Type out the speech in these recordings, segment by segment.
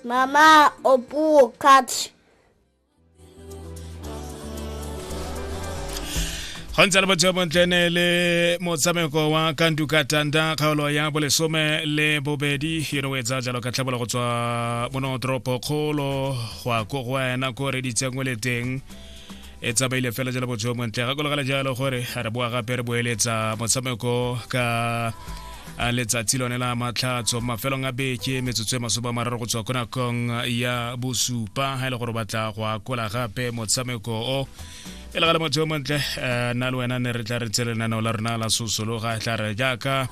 Mama Opu catch. go ntse le botsheo bontle ne le motshameko wa kanduka tanda kgaolo ya bolesome le bobedi yone o etsa jalo ka tlhabola go tswa mono toropo kgolo go ya ko go wena ko reditsengwe le teng e tsamaile fela jalo botsheo montle ga kologale jalo gore re boa gape re boeletsa motshameko ka a letsatsi lone la matlhatso mafelong a beke metsotso e masome a mararo go tswa ko nakong ya bosupa ga e le gore batla go akola gape motshameko o e le ga le motho yo montle eh, nna le wena ne re tla re tse lenaneo la rona la sosologa e tla re jaaka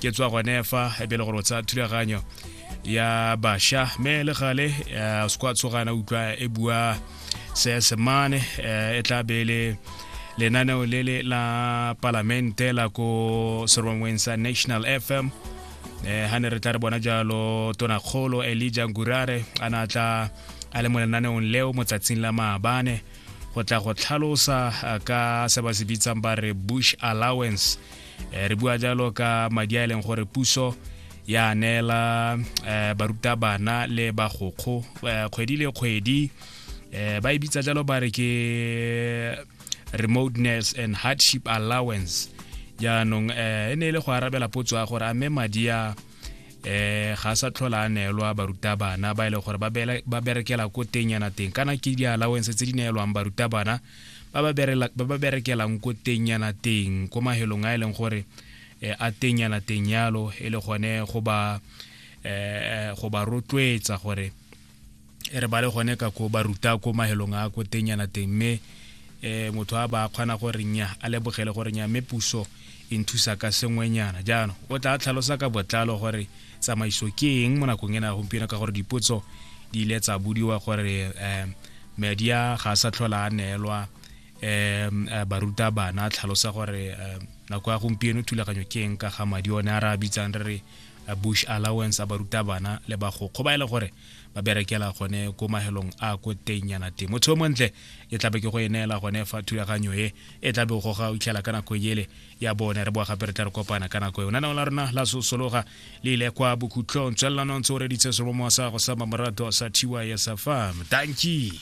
ke tswa gone fa e be le gore o tsaya thulaganyo ya basha mme le gale eh, o se kwa tsogana utlwa e bua seesemane eh, e tla be le lenaneo le le la palamente la ko serongweng sa national fm eh ha ne re tla re bona jalo tonakgolo elija ngurare a na tla a le mo lenaneong leo motsatsing la maabane go tla go tlhalosa eh, ka se ba se bitsang ba re bush allowance eh, re bua jalo ka madi a e leng gore puso ya neela eh, barutabana le bagokgo eh, kgwedi le kgwedi eh, ba e bitsa jalo ba re ke remoteness and hardship allowance jaanong eh, e ne e le go arabela potso ya gore a mme madi a eh ga sa tlhola a neelwa barutabana ba e leng gore ba berekela ko teng yana teng kana ke di-allowance tse di neelwang barutabana ba ba berela- ba ba berekelang ko teng yana teng ko mahelong a e leng gore eh, a teng yana teng yalo e le gone go ba eh, go ba rotloetsa gore e re ba le gone ka ko ba ruta ko mahelong a ko teng yana teng mme eh, motho a ba kgona gore nya a lebogele gore nya mme puso e nthusa ka sengwenyana jaanong o tla tlhalosa ka botlalo gore tsamaiso ke eng mo nakong ena ya gompieno ka gore dipotso di ile tsa budiwa gore um media ga a sa tlhola a neelwa um baruta bana tlhalosa gore um nako ya gompieno thulaganyo ke eng ka ga madi one a re a bitsang re re eh, bush allowance a baruta bana le bagokgo ba e le gore ba berekela gone ko mahelong a ko teng yana teng motho o montle e tlabe ke go e neela gone fa thulaganyo e e tlabe o goga o itlhela ka nako ele ya bone re boa gape re tla re kopana ka nako e ona nao la rona la sosologa le ile kwa bokhutlong tswelelanong tse o reditse seromo sa go sa mamorato sa thy sa fam tanki